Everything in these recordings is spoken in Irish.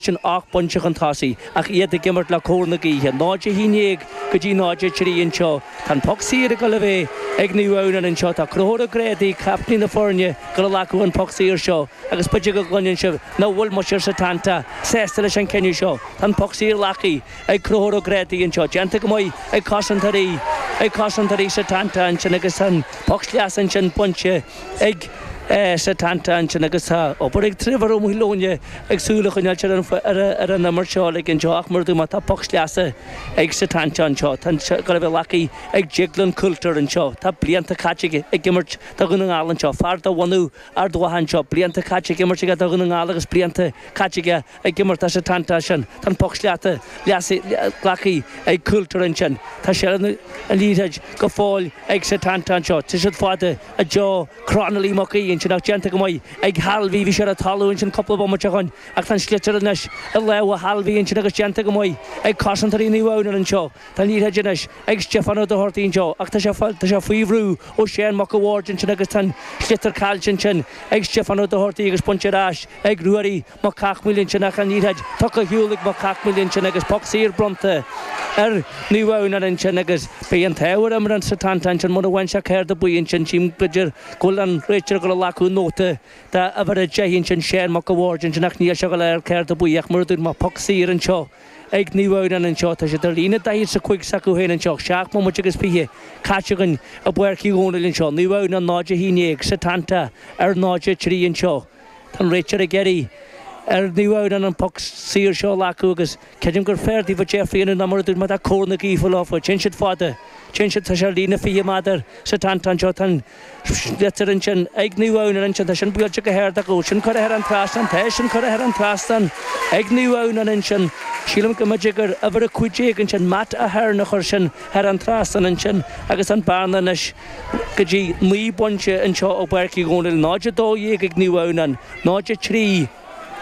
sin ocht bpointe chun tosaigh ach iad ag imirt le cóir na gaoithe, 0-11 go dtí 0-3 anseo. Tá an poc saor ag dul a bheith ag Naomh Adhamhnáin anseo. Tá Conchúr Ó Grádaigh, captaen na foirne, ag dul a ghlacadh an poc saor seo agus b'fhéidir go gcluineann sibh nach bhfuil muintir Setanta sásta leis an cinneadh seo. Tá an poc saor glactha ag Conchúr Ó Grádaigh anseo. Déanta go maith ag cosantóirí ag cosantóirí Setanta ansin agus an poc sleasa ansin bainte. ag Setanta ansin agus tá obair ag Trevor Ó Maoileoin ag súil a choinneáilt ar an imirt uilig anseo ach mar a dúirt mé tá poc sleasa ag Setanta anseo. Tá sé ag dul a bheith glactha ag Déaglán Coulter anseo. Tá blianta caite ag imirt do Dhún na nGall anseo. Fear de bhunadh Ard Mhacha anseo. Blianta caite ag imirt aige do Dhún na nGall agus blianta caite aige ag imirt do Setanta ansin, tá an poc sleasa glactha ag Coulter ansin, tá seilbh ar an liathróid go fóill ag Setanta anseo, téann siad fada, i dtreo Cronolly McGee ansin ach déanta go maith ag Harvey, bhí sé ar an talamh ansin cúpla bomaite ó shoin ach tá an sliotar anois i lámha Harvey ansin agus déanta go maith ag cosantóirí Naomh Adhamhnáin anseo, tá an liathróid anois ag Stiofán Ó Dochartaigh anseo ach tá sé, tá sé faoi bhrú ó Seán Mac a' Bhaird ansin agus tá an sliotar caillte ansin ag Stiofán Ó Dochartaigh agus bainte ar ais ag Ruairí Mac Cathmhaoil ansin ach an Oiread Focal Shiúil ag Mac Cathmhaoil ansin agus Poc Saor bronnta ar Naomh Adhamhnáin anseo Agus Beidh An tÁbhar imní ar Setanta Ansin Mura Bhfaigheann Sé Céard a Bhí Ansin Tchím Go Dir Go Bhfuil An Réiteoir Ag Dul a Ghlacadh Nóta de uimhir a Deich Ansin Seán Mac a' Bhaird Ansin Ach Níl Sé soiléir Céard a Bhí Ach mar a dúirt mé poc Saor Anseo ag Naomh Adhamhnáin anseo Tá Siad Ar Líne Daichead 's a Cúig s'acu Féin Anseo Ach Seacht mBomaite Agus Fiche Caite Againn i bPáirc Uí Dhónaill Anseo Naomh Adhamhnáin 0 11 Setanta Ar 0 3 Anseo. Tá'n réiteoir ag iarraidh ar Naomh Adhamhnáin an poc saor seo a ghlacadh agus creidim gur fearr daofa deifriú nó mar a dúirt mé tá cóir na gaoithe leofa, téann siad fada, téann siad tá sé ar líne fiche méadar Setanta anseo tá'n sliotar ansin ag Naomh Adhamhnáin ansin tá sin buailte go hard ach an bhfuil sin curtha thar an trasnán tá tá sin curtha thar an trasnán ag Naomh Adhamhnáin ansin sílim go mb'fhéidir gur uimhir a cúig déag ansin Matt Ahern a chuir sin thar an trasnán ansin agus an bearna anois go dtí 9 bpointe anseo i bPáirc Uí Dhónaill, 0 12 ag Naomh Adhamhnáin, 0 3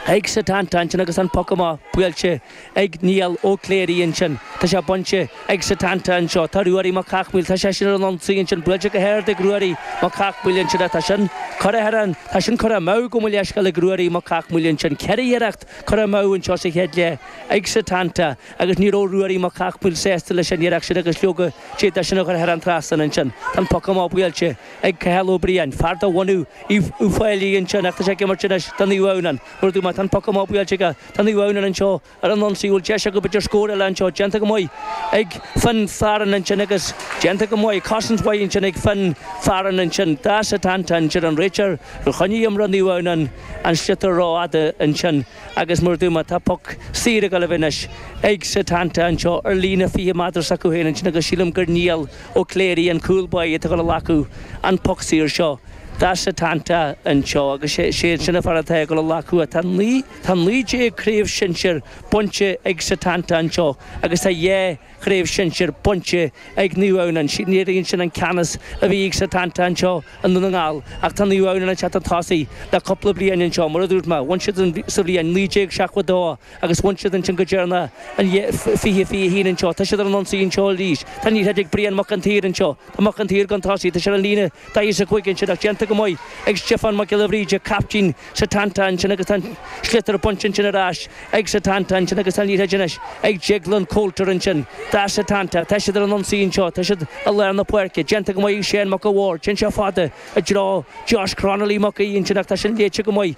ag Setanta ansin agus an poc amach buailte ag Niall Ó Cléirigh ansin. Tá sé bainte ag Setanta anseo. Tá Ruairí Mac Cathmhaoil, tá seisean ar an ionsaí ansin, buailte go hard ag Ruairí Mac Cathmhaoil ansin ach tá sin curtha thar an, tá sin curtha amú gabh mo leithscéal ag Ruairí Mac Cathmhaoil ansin. Ceithre iarracht curtha amú anseo sa chéad leath ag Setanta. agus ní raibh Ruairí Mac Cathmhaoil sásta leis an iarracht sin agus leoga, d'fhéad sé sin a chur thar an trasnán ansin. Tá an poc amach buailte ag Cathal Ó Briain, fear de bhunadh Uíbh Fhailí ansin ach tá sé ag imirt anois do Naomh Adhamhnáin. Mar a dúirt mé, tá an poc amach buailte aige. Tá Naomh Adhamhnáin anseo ar an ionsaí, bhfuil deis acu b'fhéidir scór eile anseo, déanta go maith ag Finn Farren ansin agus déanta go maith, cosaint mhaith ansin ag Finn Farren ansin, do Setanta ansin, an réiteoir, a choinnigh imreoir Naomh Adhamhnáin an sliotar rófhada ansin. Agus mar a dúirt mé, tá poc saor ag gabháil a bheith anois ag Setanta anseo ar líne 20 méadar s'acu féin ansin agus sílim gur Niall Ó Cléirigh, an cúl báire, atá ag gabháil a ghlacadh an poc saor seo do Setanta anseo agus is é sin an fear atá ag gabháil a ghlacadh, tá 19 craobh sinsir bainte ag Setanta anseo agus tá dhá Chraobh Shinsir bainte ag Naomh Adhamhnáin. Léiríonn sin an ceannas a bhí ag Setanta anseo i nDún na nGall ach tá Naomh Adhamhnáin ag teacht chun tosaigh le cúpla bliain anseo. Mar a dúirt mé, bhain siad sa bhliain 1972 agus bhain siad ansin go deireanach in 2021 anseo. Tá siad ar an ionsaí anseo arís. Tá an liathróid ag Brian Mac an tSaoir anseo. Tá Mac an tSaoir chun tosaigh. Tá sé ar an líne daichead is a cúig ansin ach déanta go maith ag Stiofán Mac Giolla Bhríde, caiptín Setanta ansin agus tá an sliotar bainte ansin ar ais ag Setanta ansin agus tá an liathróid anois ag Declan Coulter ansin do Setanta. Tá siad ar an ionsaí anseo, tá siad i lár na páirce, déanta go maith ag Seán Mac a' Bhaird, téann sé fada i dtreo Josh Cronolly Mac Aoidh ansin ach tá sin léite go maith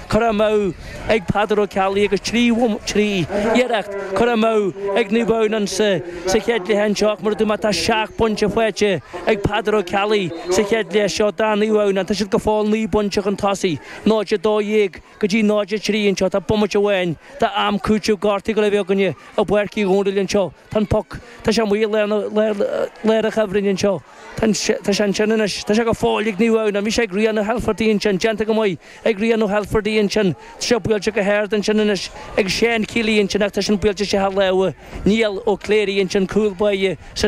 curtha amú ag Peadar Ó Ceallaigh agus trí iarracht curtha amú ag Naomh Adhamhnáin sa chéad chluiche anseo ach, mar a dúirt mé, tá seacht bpointe faighte ag Peadar Ó Ceallaigh sa chéad chluiche seo do Naomh Adhamhnáin. Tá siad go fóill naoi bpointe chun tosaigh, 0-12 go dtí 0-3 anseo. Tá bomaite amháin d'am cúitimh gortaithe ag gabháil a bheith againne i bPáirc Uí Dhomhnaill anseo. Tá an poc, tá sé amuigh i lár an chuibhrinn anseo. Tá sé ansin anois. Tá sé go fóill ag Naomh Adhamhnáin. Bhí sé ag Ryan Hilferty ansin, déanta go maith. ag Ryan Hilferty ansin. Tá sé buailte go hard ansin anois ag Sean Keely ansin ach tá sin buailte isteach i lámha Niall Ó Cléirigh ansin, cúl báire sa